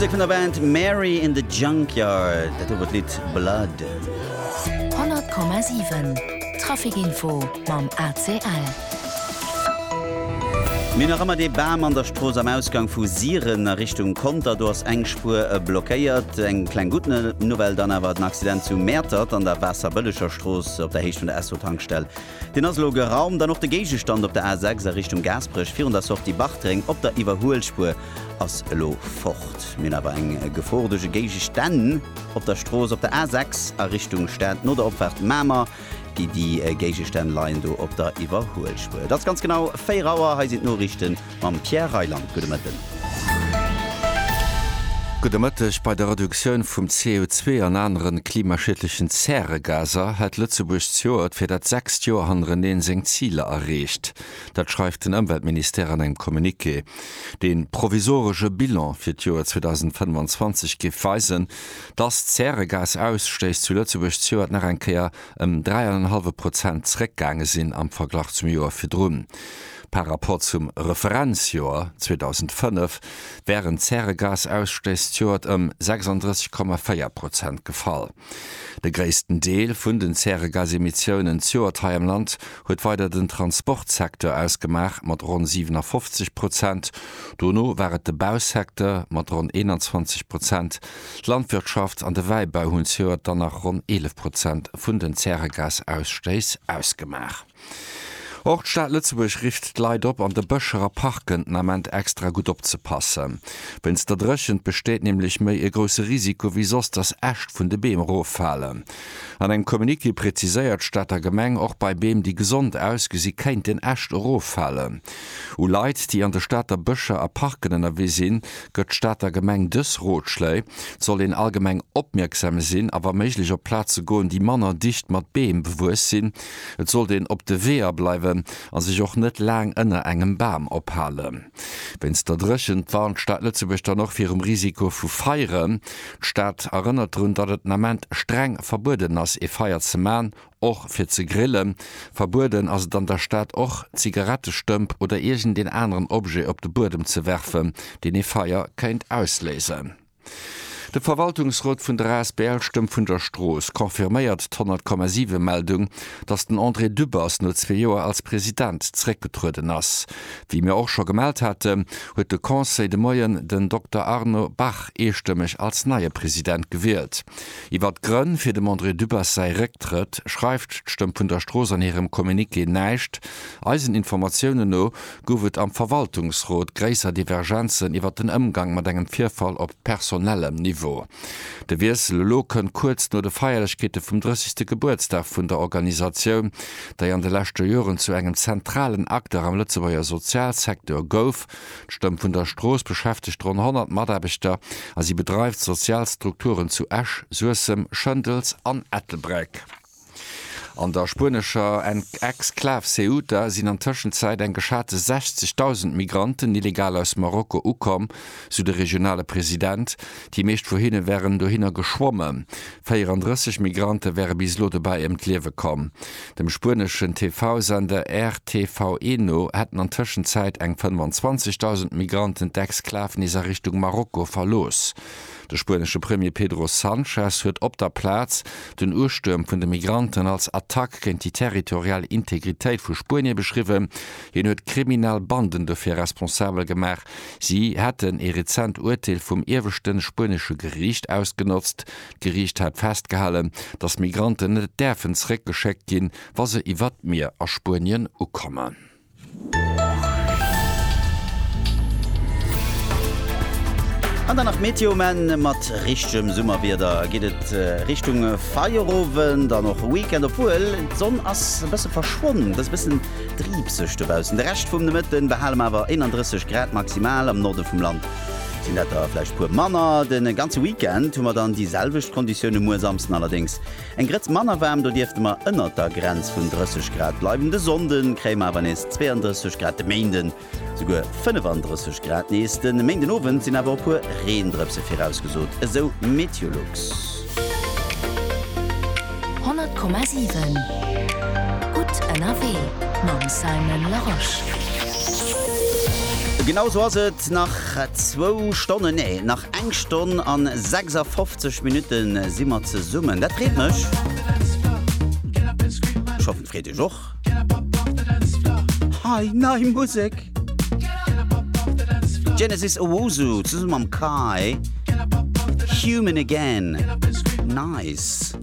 D'Musek vun der Band Mary in the Junkyard, dat do wor d'Lidd Blood. 100,7 Traficinfo mam ACL. Mir hu nach ëmmer dee Bam an der Strooss am Ausgang vu Siren a Richtung Conter. Do ass eng Spuer blockéiert. Eng kleng gutt Nouvelle dann awer, den Accident zu Mäertert an der Waasserbëllegerstrooss op der Héicht vun der Esso-Tankstell Deen ass elo geraumt an och de Géigestand op der A 6 a Richtung Gaasperech virun der Sortie Bartreng op der Iwwerhuelspuer ass elo fort. Mir hunn awer eng Gefor duerch e Géigestänn op der Strooss op der A 6 a Richtung Stad no der Opfaart Mamer. Déi Géigestänn leien do op der Iwwerhuelspuer. Et ass ganz genau 4 Auer. Hei sinn d'Noriichten. Mam Pierre Reyland, gudde Mëtten. Gudde Mëtteg. Bei der Reduktioun vum CO2 an anere klimaschiedlechen Zäregaser hätt Lëtzebuerg d'Joert fir dat sechst Joer hannereneen seng Ziler erreecht. Dat schreift den Ëmweltministère an engem Communiqué. De provisoresche Bilan fir d'Joer 2025 géif weisen, dass d'Zäregasaausstéiss zu Lëtzebuerg d'Joert nach eng Kéier ëm dräi an en hallwe Prozent zeréckgaange sinn am Verglach zum Joer virdrun. Par Rapport zum Referenzjoer 2005 wären d'Zäregasausstëss d'Joert ëm 36,4 Prozent gefall. De gréissten Deel vun den Zäregasemissiounen d'Joert hei am Land huet weider den Transportsecteur ausgemaach mat ronn 57 Prozent, dono war et de Bausecteur mat ronn 21 Prozent. D'Landwirtschaft an de Wäibau hunn d'Joert dann nach ronn 11 Prozent vun den Zäregasausstëss ausgemaach. Och d'Stad Lëtzebuerg rifft d'Leit op, an de Bëscher a Parken den Ament extra gutt opzepassen. Wéinst der Dréchent besteet nämlech méi e grousse Risiko wéi soss, dass Äscht vun de Beem eroffalen. An engem Communiqué preziséiert d'Stater Gemeng, och bei Beem, déi gesond ausgesi kéinten Äscht eroffalen. U Leit, déi an de Stater Bëscher a Parken ënnerwee sinn, gëtt d'Stater Gemeng dës Rotschléi, Et soll een allgemeng opmierksam sinn a wa méiglech op Plaze goen, déi manner dicht mat Beem bewuess sinn, Et sollt een op de Weeër bleiwen a sech och net laang ënner engem Bam ophalen. Wéinst der Dréchent warnt d'Stad Lëtzebuerg dann och virum Risiko vu Feieren. D'Stad erënnert drun, datt et den Ament streng verbueden ass ee Feier ze man, och fir ze grillen. Verbueden ass et an der Stad och Zigarettestëmp oder iergendeen aneren Objet op de Buedem ze werfen, deen ee Feier kéint ausléisen. De Verwaltungsrot vun der asbl Stëmm vun der Strooss confirméiert d'Honnertkommasive Meldung, datt den André Dübbers no zwee Joer als President zeréckgetrueden ass. Wéi mir och scho gemellt haten, huet de Conseil de Moien den Dokter Arno Bach eestëmmeg als neie President gewielt. Iwwert d'Grënn fir dem André Dübbers säi Récktrëtt schreift d'Stëmm vun der Strooss an hirem Communiqué näischt. Eisen Informatiounen no Gouf et am Verwaltungsrot gréisser Divergenzen iwwer den Ëmgang mat engem Virfall op personellem Niveau? De Wiessel elo kënnt kuerz no de Feierlechkeete vum 30. Gebuertsdag vun der Organisatioun, déi an de leschte Joren zu engem zentralen Acteur am Lëtzebuerger Sozialsecteur gouf. D'Stëmm vun der Strooss beschäftegt ronn 100 Mataarbechter a si bedreift sozial Strukturen zu Esch, Suessem, Schëndels an Ettelbréck. An der spuenescher Exklav Ceuta sinn an Tëschenzäit eng geschate 60.000 Migranten illegal aus Marokko ukomm, sou de regionale President. Déi meescht vu hinne wären dohinner geschwomme. 34 Migrante wäre bis elo dobäi ëm d'Liewe komm. Dem spueneschen TV-Sender RTVE no hätten an Tëschenzäit eng 25.000 Migranten d'Exklav nees a Richtung Marokko verlooss. De spuenesche Premier Pedro Sanchez huet op der Plaz den Ustuerm vun de Migranten als Attack géint déi territorial Integritéit vu Spuenie beschriwwen. Hien huet kriminell Banden dofir responsabel gemaach, si hätten ee rezent Urteel vum ieweschte spuenesche Geriicht ausgenotzt. D'Geriicht hat festgehalen, datt Migranten net däerfen zeréckgeschéckt ginn, wa se iwwer d'Mier a Spuenien ukommen. An dann nach d'Meteo, mä mat richtegem Summerwieder geet et Richtung Feierowend an och Weekend, obwuel d'Sonn ass e bësse verschwonnen. Et ass e bëssen driibseg dobaussen. De Rescht vum Nomëtte behale mer awer 31 Grad maximal, am Norde vum Land sinn dat der vläicht e puer manner. De ganze Weekend hu mer dann déi selwecht Konditioune, muer Samsden allerdéngs Eng Grëtz manner waarm, do dierfte mer ënnert der Grenz vun 30 Grad bleiwen. De Sonnde kréie mer awer nees 32 Grad, de Méinde souguer 35 Grad nees. De Méindenowend sinn awer e puer Reendrëpse virausgesot, esou Meteolux. 100,7 gutt ënnerwee mam Simon Larosche. Genau sou ass et, nach zwou Stonnen, nee, nach eng Stonn an 56. 60 Minuten si mer zesummen, dat freet mech. Ech hoffen et freet iech och. Hei, nei Musek! Genesis Owusu zesumme mam Kai, Human Again, nice!